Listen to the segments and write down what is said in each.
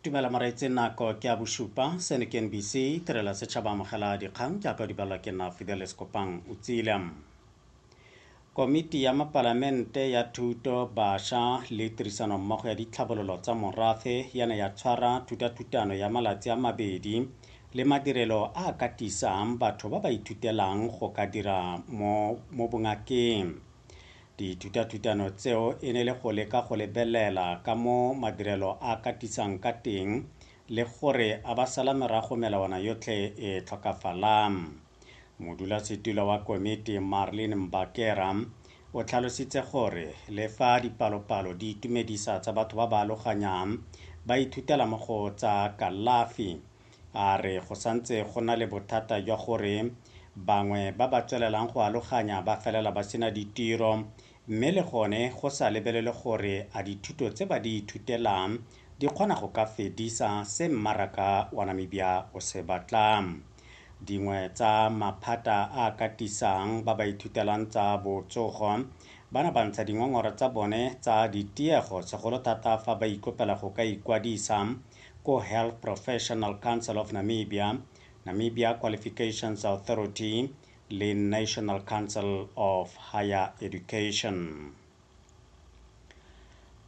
tumela moreetse nako ke a bosupa seno ke nbc tirela setšhaba amogela dikgang jaaka o di balwa ke nna fideles kopang o tsile komiti ya mapalamente ya thuto bašwa le tirisanommogo ya ditlhabololo tsa morafe ya ne ya tshwara thutathutano ya malatsi a mabedi le madirelo a ka tisang batho ba ba ithutelang go ka dira mo bongakeng Dithutathutano tseo e ne le go leka go lebelela ka mo madirelo a katisang ka teng le gore a ba sala morago melawana yotlhe e tlhokafalang. Modulasetilo wa komiti Marlene Mbakera o tlhalositse gore le fa dipalopalo di itumedisa tsa batho ba ba aloganyang ba ithutela mo go tsa kalafi, a re go santse go na le bothata jwa gore bangwe ba ba tswelelang go aloganya ba felela ba sena ditiro mme le gone go sa lebelele gore a dithuto tse ba di ithutelang di kgona go ka fedisa se mmaraka wa Namibia o se batlang. Dingwe tsa maphata a a katisang ba ba ithutelang tsa botsogo bana ba ntsha dingongora tsa bone tsa ditiego segolo thata fa ba ikopela go ka ikwadisa ko Health Professional Council of Namibia, Namibia Qualifications Authority le National Council of Higher Education.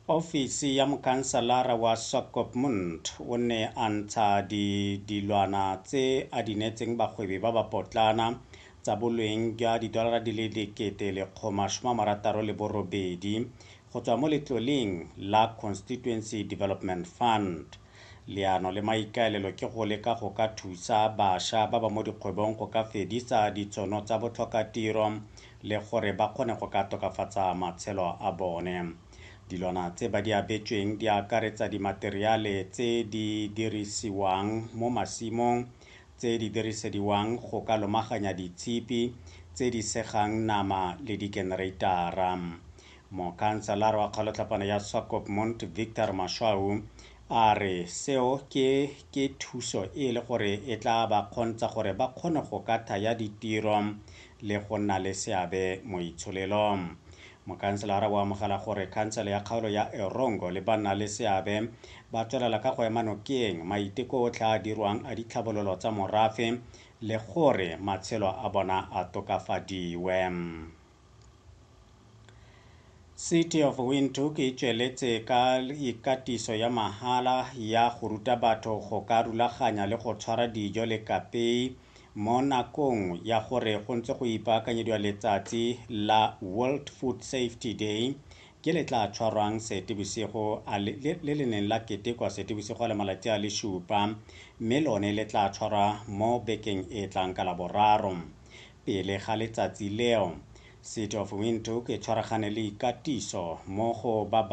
Ofisi ya mokanselara wa Swakopmund o ne a ntsha di dilwana tse a di neetseng bagwebi ba ba potlana tsa bolweng jwa didolara di le dikete lekgoma shoma marataro le borobedi go tswa mo letloleng la Constituency Development Fund. Leano le maikaelelo ke go leka go ka thusa basha ba ba mo dikgwebong go ka fedisa ditshono tsa botlhokatiro le gore ba kgone go ka tokafatsa matshelo a bone. Dilwana tse ba di abetsweng di akaretsa dimateriale tse di dirisiwang mo masimong tse di dirisediwang go ka lomaganya ditshipi tse di segang nama le dikenereitara. Mokhanselara wa kgolotlhapana ya Swakopmund, Victor Mashwau, a re seo ke ke thuso e e le gore e tla ba kgontsha gore ba kgone go ka thaya ditiro le go nna le seabe mo itsholelong. Mokhanselara o amogela gore khansele ya kgaolo ya Erongo le banna le seabe ba tswelela ka go ema nokeng maiteko otlhe a a dirwang a ditlhabololo tsa morafe le gore matshelo a bona a tokafadiwe. City of Windhoek e tsweletse ka ikatiso ya mahala ya go ruta batho go ka rulaganya le go tshwara dijo le kapei mo nakong ya gore go ntse go ipaakanyediwa letsatsi la World Food Safety Day ke le tla tshwarwang Seetebosigo le le neng la ketekwa Seetebosigo a le malatsi a le supa mme lone le tla tshwarwa mo bekeng e tlang ka Laboraro. Pele ga letsatsi leo, City of Windhoek e tshwaragane le ikatiso mo go ba